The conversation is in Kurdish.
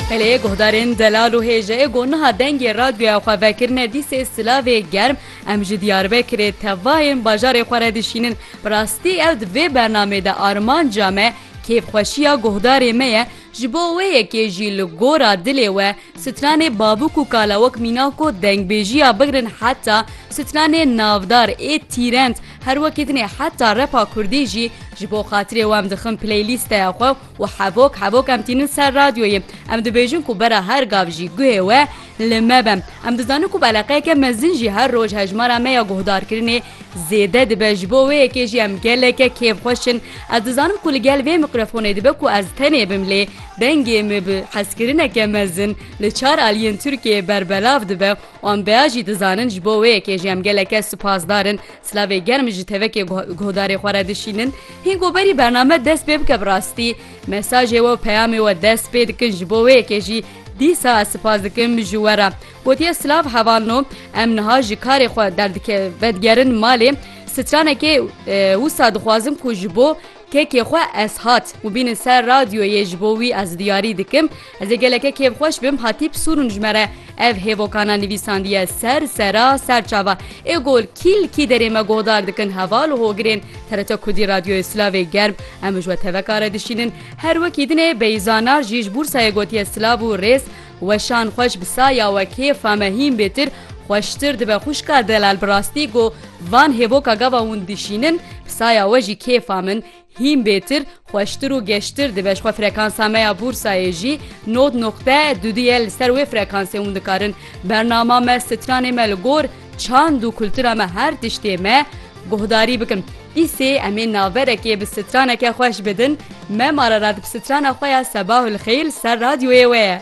Peleyê guhdarên Delal û Hêjeyê got niha dengê radyoya xwe vekirine dîsê silavê germ em ji Diyarbekirê tevahên bajarê xwe re dişînin. Bi rastî ew di vê bernameyê de armanca me kêfxweşiya guhdarê me ye ji bo wê yekê jî li gora dilê we stranê babûk û kalawok mîna ku dengbêjiya bigrin heta stranê navdar ê tîrend her wekî dinê heta repa kurdî jî ji bo xatirê we em dixin playlîsteya xwe Û hevok hevok em tînin ser radyoyê. Em dibêjin ku bera her gav jî guhê we li me be. Em dizanin ku beleqeyeke mezin jî her roj hejmara me ya guhdarkirinê zêde dibe. Ji bo wê yekê jî em geleke kêfxweş in. Ez dizanim ku li gel vê mîkrofonê dibe ku ez tenê bim lê dengê me bi hezkirineke mezin li çar aliyên Tirkiyeyê berbelav dibe. Wan bea jî dizanin ji bo wê yekê jî em geleke supasdar in. Silavê germ ji tevekê guhdarê xwe re dişînin. Hîn ku berî bername dest pê bike bi rastî mesajê we û peyamê we dest pê dikin ji bo wê yekê jî dîsa ez sipas dikim ji we re. Gotiye silav hevalno em niha ji karê xwe derdike vedigerin malê. Stranekê wisa dixwazim ku ji bo Kekê xwe ez hat û bînin ser radyoyê ji bo wî ez diyarî dikim. Ez ê geleke kêfxweş bim hatîp sûrûn ji me re. Ev hêvokana nivîsandiye ser sera ser çava ê gol kîl kî derê me guhdar dikin heval û hogirên TRT Kurdî Radyoyê Silavê germ em ji we teveka re dişînin. Her wekî dinê Beyza Nar jî ji Bûrsayê gotiye silav û rêz Weşan xweş bi saya we kêfa me hîn bêtir xweştir dibe xwişka Delal bi rastî got van hêvoka gava hûn dişînin bi saya we jî kêfa min hîn bêtir xweştir û geştir dibe ji xwe frekansa me ya Bûrsayê jî nod noqte du du ye li ser wê frekansê hûn dikarin bernama me stranê me li gor Çand û kultura me her tiştê me guhdarî bikin. Îsê em ê naverekê bi straneke xweş bidin. Me Mararat bi strana xwe ya Sebahul Xeyr li ser radyoyê we ye.